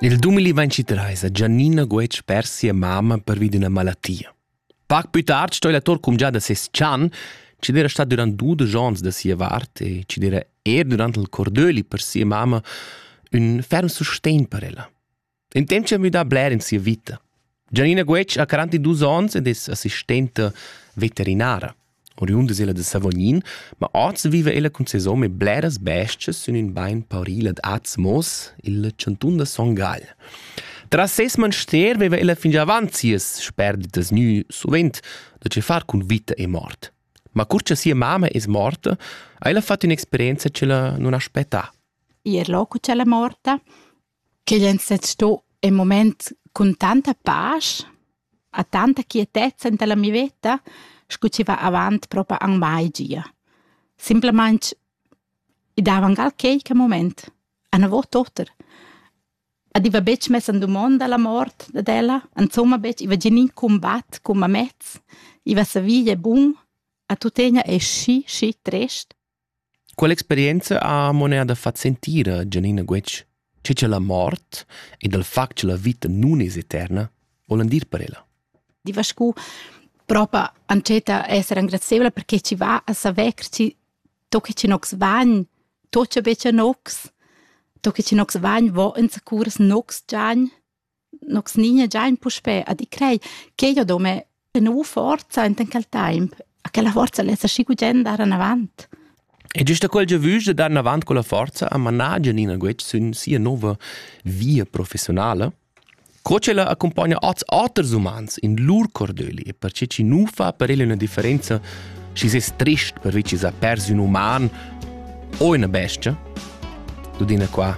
Il dumili ventitreis ha Giannina Guetg pers sia mamma pervi d'üna malattia. Pac pü tard sto il actur cumgià da ses chan, chi d'era stat durant dudesch ons da sia vart e chi d'era er durant il cordöli per sia mamma ün ferm sustegn per ella. In temp c'ha müdà bler in sia vita. Gianina Guetg ha 42 ons ed es assistenta veterinara. Oriunda es ella da Savognin, ma oz viva ella cun ses hom e bleras bestias sün ün bain pauril ad Azmos, il chantun da Son Gagl. Tras ses manster veva ella fingià avant sias sperditas gnü suvent da che far cun vita e mort. Ma cur cha sia mamma es morta, ha ella fat ün'experienza che la non aspettà. Ir loco c'è la morta, ch'igl ein sezs sto in mument cun tanta pasch ha tanta quietezza en la mia veta sco chi va avant propa anc mai gia. Simplamain i dava anc al quei che moment, anavot oter. Ed i va betg mess en dumonda la mort dad ella, insomma betg, i va gia in combat cun mamez, i va sa via bun, a tuttegna è schi, schi trist. Quell'experienza ha mo neir da far sentir a Gianina Guetg, che cha la mort ed il fact cha la vita nun es eterna volan dir per ella. Diva scu propa antscheta esser engrazevla perché chi va a saver che chi to che chi nox vagn, to cha be cha nox, to che chi nox vagn vo ins a curs nox giagn. Nox nign è già in puspè a di crei ch'ei ho do mê per nouva forza enten quel taimp, a quella forza less aschi gugent dar anavant. E giusta quel giavüsch da dar anavant con la forza ha manà Gianina Guetg sün sia nouva via professionala. Co ch'ella accompagna ots oters umans in lur cordöli e perche chi nu fa per ella üna differenza schi ses trist per vi chi s'ha pers ün uman o üna bestia? Tudina qua